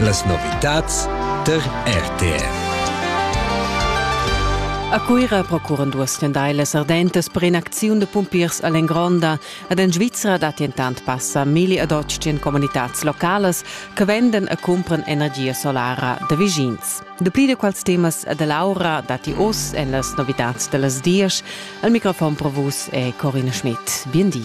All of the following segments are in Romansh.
Las novitads der RTR. A Cuira procuran duas stendailas ardentas per in'acziun da pumpiers all'Engronda. Ed en Svizra datti entant passa milli ad otg en comunitads localas che vendan e cumpran energia solara da vischins. Dapli da quels temas e da l'aura datti oz en las novitads da las dies. Al microfon pro vus è Corinne Schmidt. Bien di.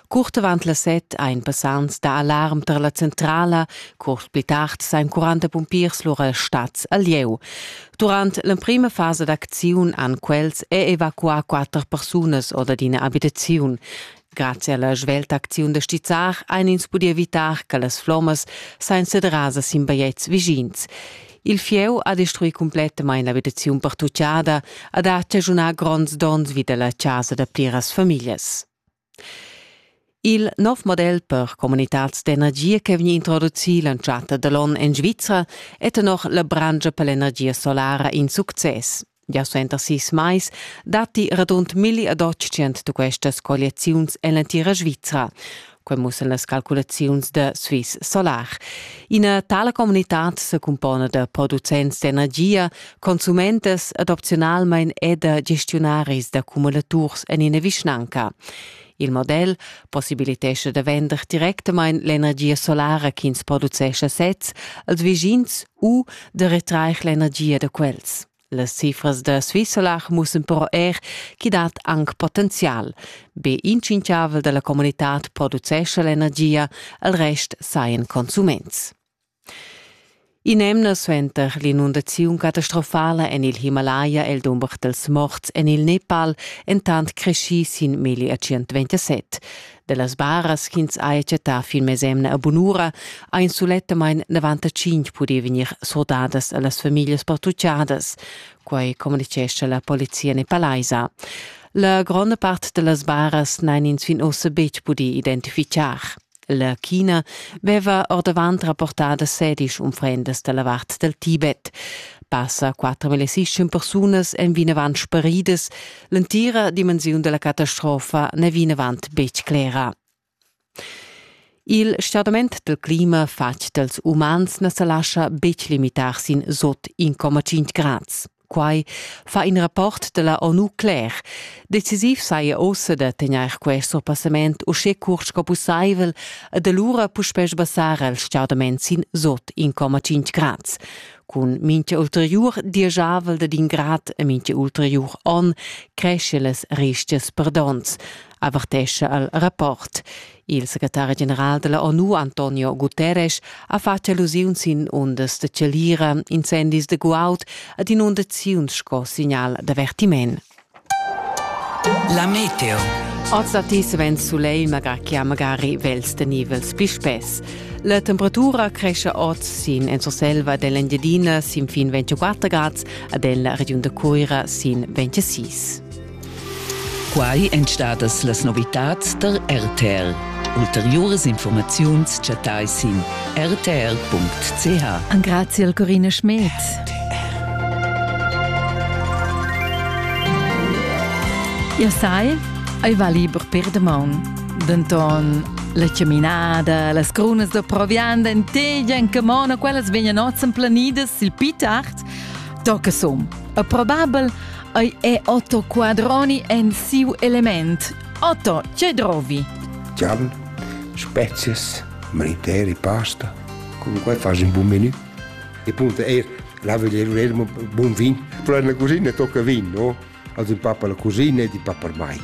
Curt avant las set ein passants da alarm tar la centrala. Cuors pli tard sein 40 pumpiers lura stats a lieu. Durant l'emprima fasa d'acziun han quels è evacuà quatter persunas oder d'ina abitaziun. Grazie alla svelta acziun da stizzar ein ins pudi evitar che las flommas sein sederasas sin bajetgs vischins. Il fieu ha destrui completamain l'abitaziun pertuccada, ha dat chaschunà gronds donns vi da la chasa da pliras famiglias. Il nov model per communitads d'energia che vegn introducì l'entschatta da l'onn en Svizra è tenor la branscha per l'energia solara in success. Gia suenter sis mais datti radund milli ad otg questas colliaziuns en l'entira Svizra. Quai mussan las calculaziuns da Swiss Solar. Ina tala communitad se cumpona da producents d'energia, Consumentas ed opzionalmein è da gestiunaris da cumulaturs en ina vischnanca. Il model possibilitescha da vender directamain l'energia solara ch'ins producescha sez als vischins u da retrair l'energia da quels. Las cifras da Swissolar mussen però er chi dat anc potenzial. Be incinchavel dalla comunitad producescha l'energia, al rest sajan consuments. In'emna suenter l'inundaziun catastrofala en il Himalaya è il dumber dals morts en il Nepal entant creschì sin meglier 127. Da las baras ch'ins haja chattà fin mesemna a bunura ha in sulettamain 95 pudì vegnir surdadas a las famiglias pertuccadas. Quai communitgescha la polizia nepalaisa. La gronda part da las baras n'han ins fin ossa betg pudì identifichar. La China veva ordavant rapportada sedisch unfrendas dalla vart dal Tibet. Passa 4.600 persunas èn vinavant sparidas. L'entira dimensiun della catastrofa n'è vinavant betg clera. Il stordament del clima fatg dels umans na sa lascia betg limitar sin sot 1,5 grads. Quai fa in rapport da la ONU cler. Decisiv saja ossa da tegnair quest surpassament uschè curt sco pussaivel ed alura puspè sbassar il stgaudament sin sot 1,5 grads. Cun mincha ulteriur dieschavel dad in grad e mincha ulteriur on creschia las rischias perdonts. avertescha al rapport. Il secretari general della ONU Antonio Guterres ha fatg allusiun sin undas de chalira, incendis de guaud ad inundaziuns sco signal d'avertiment. La meteo. Oz da ti svent soleil, magari che magari vels de nivels pispes. La temperatura cresce oz sin en Surselva dell'Engiadina sin fin 24 grads, ad la regiun de Cuira sin 26. Quai èn stadas las novitads tar RTL. Ulteriuras informaziuns chattai sin rtr.ch. Engrazi al Corina Schmed. Jau sai, ei va liber per damaun. Denton la caminada, las crunas da provianda en tegia en camona, quellas vegnan oz planidas sil pit art, tocca sum. E probabel Ei è Otto Quadroni en siu element. Otto, che drovi? Giallo, spezies, mariteri, pasta. Come qua fai un buon menù. E punto er, là vediamo buon vin. Però nella cucina tocca vin, no? Also in pappa la cucina e di pappa ormai.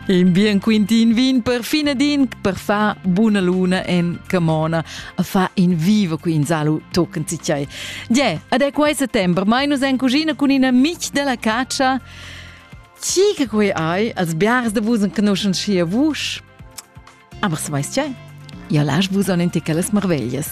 In bien quintin vin per fine din per fa buna luna en camona a fa in vivo qui in salu tocken si chai. Je, ad è quai settembre, mai nus en cucina con ina mic della caccia. Chi che quei ai als biars de vus conoscen schi a vus? Aber se weiß chai, ja lasch vus an en ticelas marveglias.